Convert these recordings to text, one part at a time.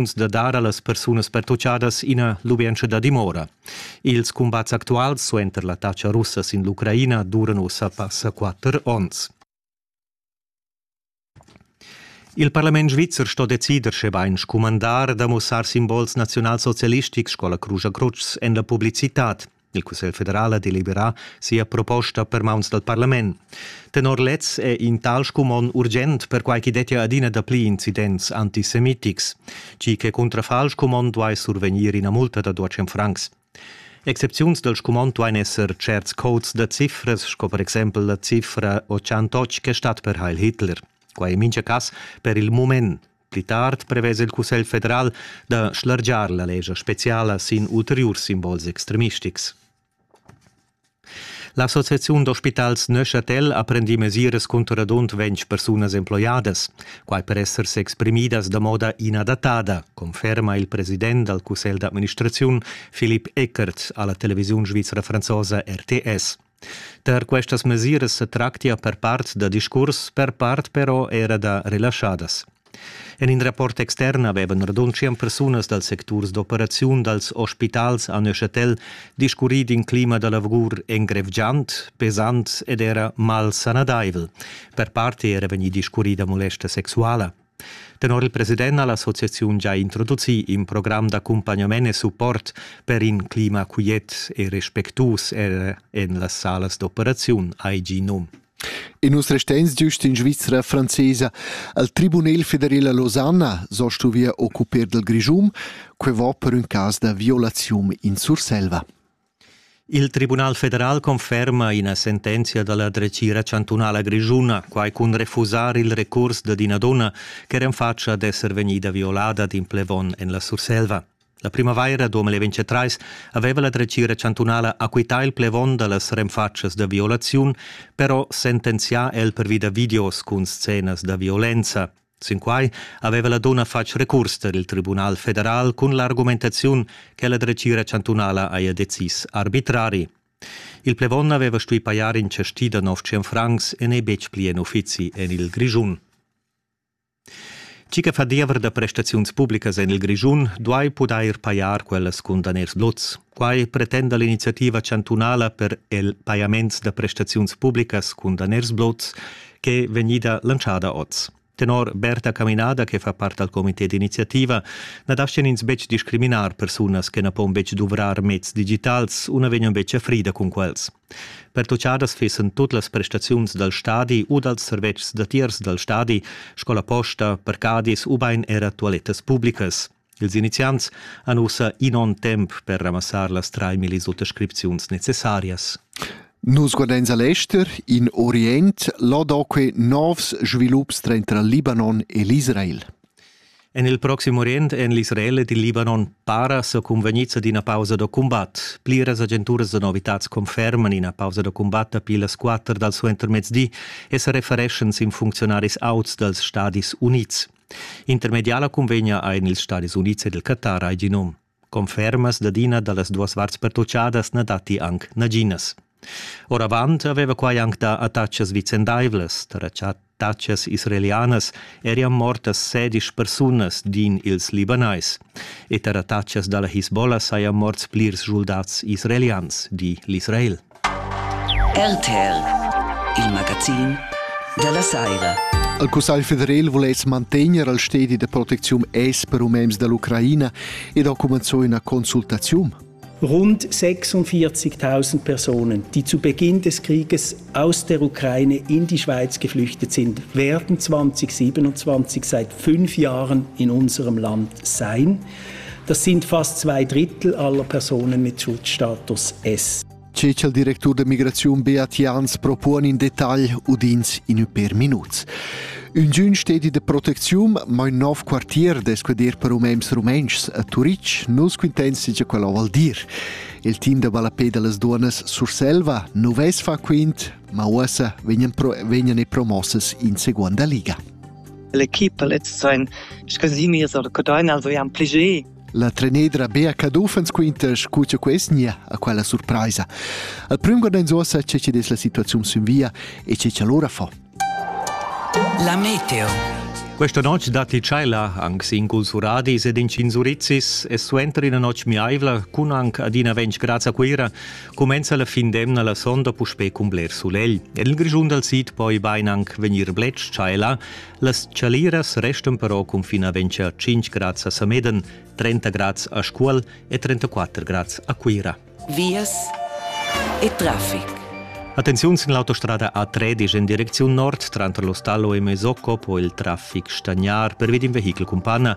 intenziuns da dar a las persunas pertutgadas ina lubientscha da dimora. Ils cumbats actuals suenter l'attacca russa sin l'Ucraina duran ussa passa quatter onns. Il parlament svizzer sto decider, schebain scumandar da mussar simbols naziunalsocialistics sco la Crugia Crutsch en la publicitad. Il Cussegl federal ha deliberà sia proposta per mauns dal parlament. Tenor lez è in tal scumon urgent perquai ch'i dettia adina dapli incidents antisemitics. Tgi che cuntrafà il scumon duai survegnir ina multa da 200 francs. Excepziuns dal scumond duain esser certs codes da cifras, sco per exempel la cifra 88 che stat per Heil Hitler. Quai è mintga cas per il mument Pli tard prevesa il Cussegl federal da schlargiar la lescha speciala sin ulteriurs simbols extremistics. L'Associaziun d'ospitals Neuchâtel ha prendì mesiras cunter radund ventg persunas emploiadas, quai per esser s'exprimidas da moda inadattada, conferma il president dal cussegl d'administraziun Philipp Eckert a la televisiun svizra franzosa RTS. Tar questas mesiras sa tractia per part da discurs, per part però era da relaschadas. En in rapport extern avevan radunschient persunas dals secturs d'operaziun dals ospitals a Neuchâtel discurrì d'in clima da lavur engrevgiant, pesant ed era malsanadaivel, per part era vegnì discurrì da molesta sexuala. Tenor il president ha l'associaziun già introducì in program d'accumpagnament e support per in clima quiet e respectuus er en las salas d'operaziun IG-NUM. E nus resteins giust in Svizra francesa. Al Tribunel federal a Losanna so stuvia occupar del Grischum, que va per un cas da violazium in Surselva. Il Tribunal federal conferma ina sentenzia da la dretgira chantunala grischuna, quai cun refusar il recurs dad ina dunna ch'era en fatscha d'esser vegnida violada d'in plevon en la Surselva. La primavaira 2023 aveva la dretgira chantunala acquità il plevon da las renfatschas da violaziun, però sentenzià el pervi da videos cun scenas da violenza. Sinquai aveva la dunna fatg recurs tar il Tribunal federal cun l'argumentaziun che la dretgira chantunala haja decis arbitrari. Il plevon aveva stuì pajar in cestì da 900 francs e n'è betg pli en uffizi en il Grischun. Tgi che fa diever da prestaziuns publicas en il Grischun duai pudair pajar quellas cun daners blots. Quai pretenda l'iniziativa chantunala per il pajaments da prestaziuns publicas cun daners blots ch'è vegnida lantschada oz. Tenor Berta Caminada, che fa part dal comité d'iniziativa, na daschian ins betg discriminar persunas che na pon betg duvrar meds digitals u na vegnan betg a frida cun quels. Pertutgadas fissan tut las prestaziuns dal stadi u dals servetschs datiers dal stadi, scola posta, parcadis ubain era tualettas publicas. Ils iniziants han ussa in onn temp per ramassar las 3000 autoscripziuns necessarias. Nus guardains a l'ester, in Orient, l'odoque novs svilups tranter Libanon e l'Israel. En il proxim Orient en l'Israel ed il Libanon para sa convegnids ad ina pausa da cumbat. Pliras agenturas da novitads conferman ina pausa da cumbat dapi las quatter dal suentermezdi e sa refereschan sin funcziunaris auts dals Stadis Unids. Intermediala cunvegna ein ils Stadis Unids ed il Qatar hai gi num. Confermas dad ina dallas duas varts pertutgadas na datti anc naginas. Oravant aveva quai anc dà attachas vicendaivlas, tar attachas israelianas erian mortas sedisch persunas din ils Libanais e tar attachas da la Hisbollah sajan morts plirs schuldats israelians, di l'Israel. RTL, il magazin dalla saira. Il Cussegl federal vuless mantegner il stedi de protecziun es per umens dall'Ucraina ed ha comenzò una consultazione. Rund 46.000 Personen, die zu Beginn des Krieges aus der Ukraine in die Schweiz geflüchtet sind, werden 2027 seit fünf Jahren in unserem Land sein. Das sind fast zwei Drittel aller Personen mit Schutzstatus S. Ce che il directur de migraziun Beat Jans propone in dettagl udins in per minuts. Un giun stedi de protecziun, ma un nov quartier desquedir per umems rumentschs a Turitg nus quintens che quello val dir. Il team de Ballapé de las Duonas Surselva nu ves fa quint, ma uossa vegnan, pro, vegnan e promosses in seconda liga. L'equipa lez ein scasimias ord Codain els jan pli gie. La trenedra Bea Caduffens quintas co che quest nia a quella surpraisa. Al prüm guardains uossa che ci des la situaziun sün via e che ci allora fa. La meteo. Questa notte datti tscheila anche in Gulsuradis ed in Cinsurizis e suenter una notte miaivla, cun anche adina 20 gradi a Cuira, cumenza la fin d'emna la sonda puspè cun bler sulegl. En il Grischun dal sid poi bain anc vegnir bled-tschaila. Las chaliras restan però cun fin a ventscher 5 grads a Sameden, 30 grads a Scuol e 34 grads a Cuira. Vias e traffic. Attenziun sin l'autostrada A13 en direcziun nord tranter l'Ostallo e Mesocco, poi il traffic stagnar per vid in vehichel cun panna.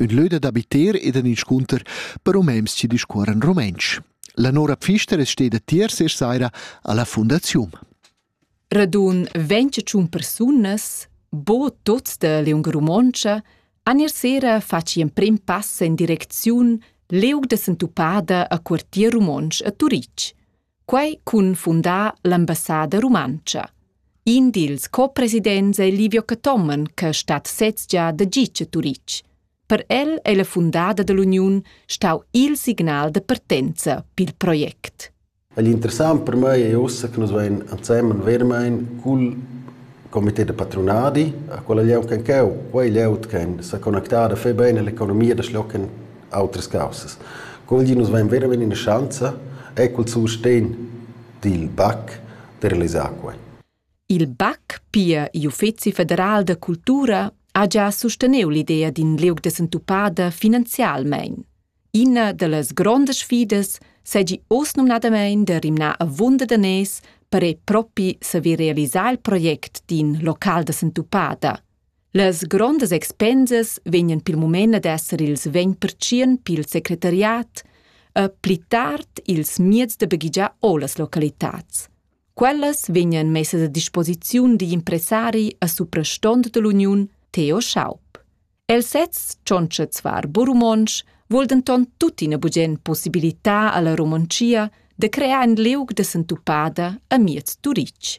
ün lö dad abiter ed ün inscunter per umens chi discuorran rumentsch. La Nora Pfister es steda tier se saira alla fundaziun. Radun 25 persunas, bo tuts da Leung Romontscha, an ir sera faci in prim pass in direcziun Leug de Sentupada a quartier Romonsch a Turic. Quai cun fundar l'ambassada rumantscha. In dils co-presidents è Livio Cathomen che stat sez gia da gitg a Turitg. Per el è la fundada dell'uniun stau il signal da partenza pil project. L'interessant per mei è ussa che nus vein ensemen vermein cul comité de patronadi, a quella lieu che cheu, quei lieu che sa connectada fe bene l'economia da schlocken autras caussas. Quel di nus vein veramein ina schanza e cul sustegn dil BAC da realisar quei. Il BAC, pia igl Uffeci federal da cultura, ha già susteniu l'idea d'in liug da sentupada finanzialmein. Ina dallas grondas sfidas segi oz numnadamein da rimnar avunda da nes per ei propi saver realisar il project d'in local da sentupada. Las grondas expensas vegnan pil mument ad esser ils vegn pertschien pil secretariat e pli tard ils mieds da baghegiar o las localitads. Quellas vegnan messas a disposiziun digl impressari a suprastont dall'Uniun Theo Schaub. El sez tschontscha zvar Burumonsch vul denton tuttina bugen possibilitar alla Romontschia de crear in liug de sentupada a miez Turitg.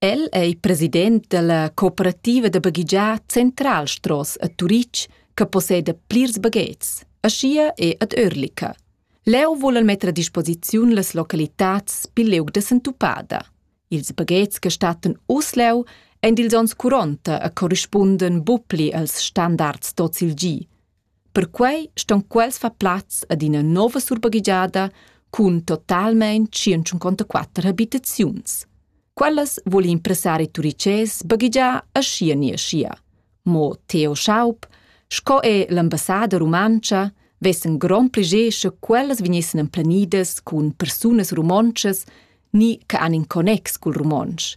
El è il president dalla cooperativa da baghegiar Central Stross a Turitg che posseda plirs baghets, aschia e ad Örlica. Leu vulan metter a disposiziun las localitads pil liug da sentupada. Ils baghets che stattan uss leu ein dils onns 40 e corrispunden bupli als standards d'ozilgi. Perquei ston quels far plaz ad ina nova surbaghegiada cun totalmein tschient-cinquantaquatter habitaziuns. Quellas vul in impressari turices baghegiar aschia ni aschia. Mo Theo Schaub, sco è l'ambassader rumantscha, vessen grond pleger sche quellas vegnessen emplenidas cun persunas romontschas ni che han in connex cul romontsch.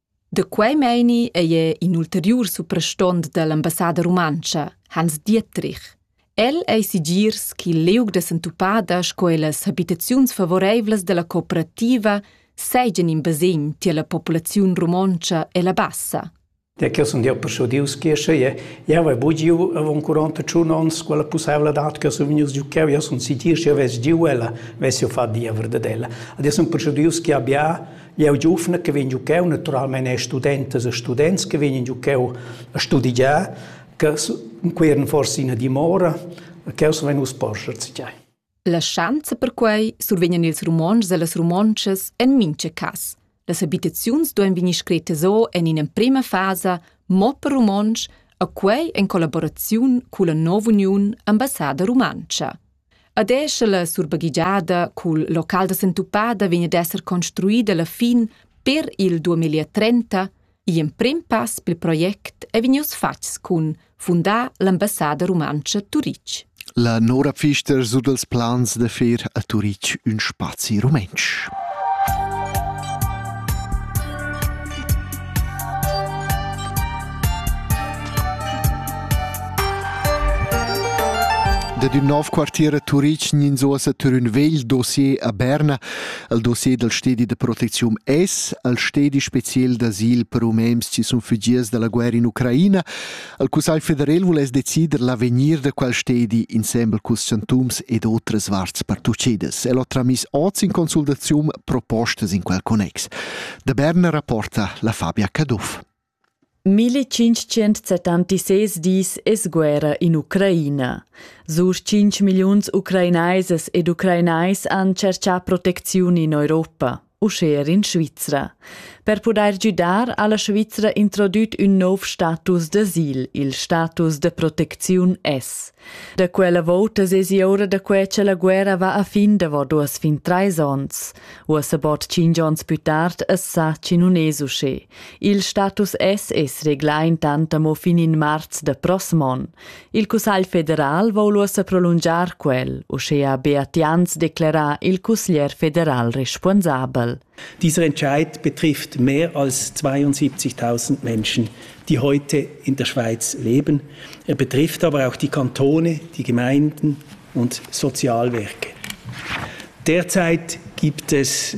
Da quei meini ei er in ulteriur suprastont dall'ambassada rumantscha, Hans Dietrich. El ei sigirs ch'il liug da sentupada sco e las habitaziuns favoreivlas dalla cooperativa seigien in basegn tier la populaziun romontscha e la bassa. Da che sun dir persudius che sche je jau hai bugiu avon 41 ons quella pussavladad che sun vegnius giu cheu jau sun sittir sche ves giu ella ves jo fa diever de ella. Ad sun persudius che abbia Jeu giuvna che vegn giucheu naturalmein e studentas e students che vegnan giucheu a studigiar, che quei eran forse ina dimora, cheu sa vegnus porscher tgei. La schanza perquei survegnan ils romontschs e las romontschas en mincha cas. Las abitaziuns duein vegnir screttas o en in'emprema fasa, mo per romontsch, a quei en collaboraziun culla nov'uniun ambassada rumantscha. Ad esser la surbaghigiada cul local da sentupada vegn ad esser construida la fin per il 2030, gl'emprim pass pel project ei vegnius fatgs cun fundar l'ambassada rumantscha Turitg. La Nora Pfister su dals plans da fer a Turitg ün spazi rumentsch. Dad ün nov quartier a Turitg ninzuossa tur ün vegl dossier a Berna, al dossier dal stedi da protecziun S, al stedi speciel d'asil per umens chi sun fügiers da la guerra in Ucraina, Il Cussegl federal vuless decider l'avegnir da quel stedi insembel culs chantuns ed otras varts pertuccidas. El ha tramis oz in consultaziun propostas in quel connex. Da Berna rapporta la Fabia Caduff. 1576 dis es guerra in Ucraina. Sur 5 milliuns ucrainaises ed ucrainais han cerchà protecziun in Europa. uschè er in Svizra. Per pudair güdar ha la Svizra introdüt ün nouv status d'asil, il status de protecziun S. Da quella vouta sesi ora da que cha la guerra va a fin davo duos fin trais ons. Uossa bod tschinch ons pü tard es sa chi nun es uschè. Il status S es reglà intant amo fin in marz da prossm on. Il Cussagl federal vogl uossa prolungiar quel, uschea Beat Jans declerà il cusglier federal responsabel. Dieser Entscheid betrifft mehr als 72.000 Menschen, die heute in der Schweiz leben. Er betrifft aber auch die Kantone, die Gemeinden und Sozialwerke. Derzeit gibt es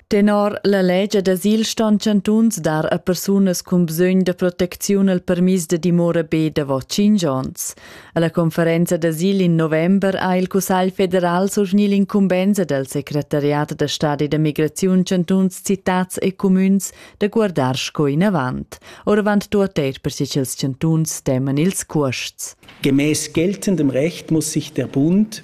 Tenor la legia d'asil ston chantuns dar a persunas cun bsögn da protecziun il permis da dimora be davo 5 ons. Alla conferenza d'asil in november ha il Cussegl federal surgni l'incumbenza del secretariat da stadi da migraziun chantuns, citats e comüns da guardar sco inavant. Oravant tuotteit per chels chantuns teman ils cuosts. Gemäß geltendem Recht muss sich der Bund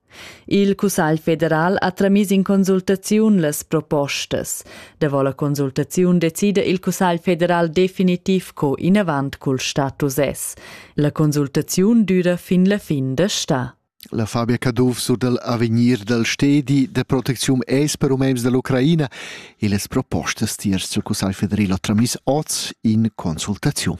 Il Cussagl federal ha tramiss in consultaziun las propostas. Davo la consultaziun decida il Cussagl federal definitiv co inavant cul status es. La consultaziun düra fin la fin da sta. La Fabia Caduff sur dal avegnir dal stedi da protecziun es per umens da l'Ucraina e las propostas tiers il Cussagl federal ha tramiss oz in consultaziun.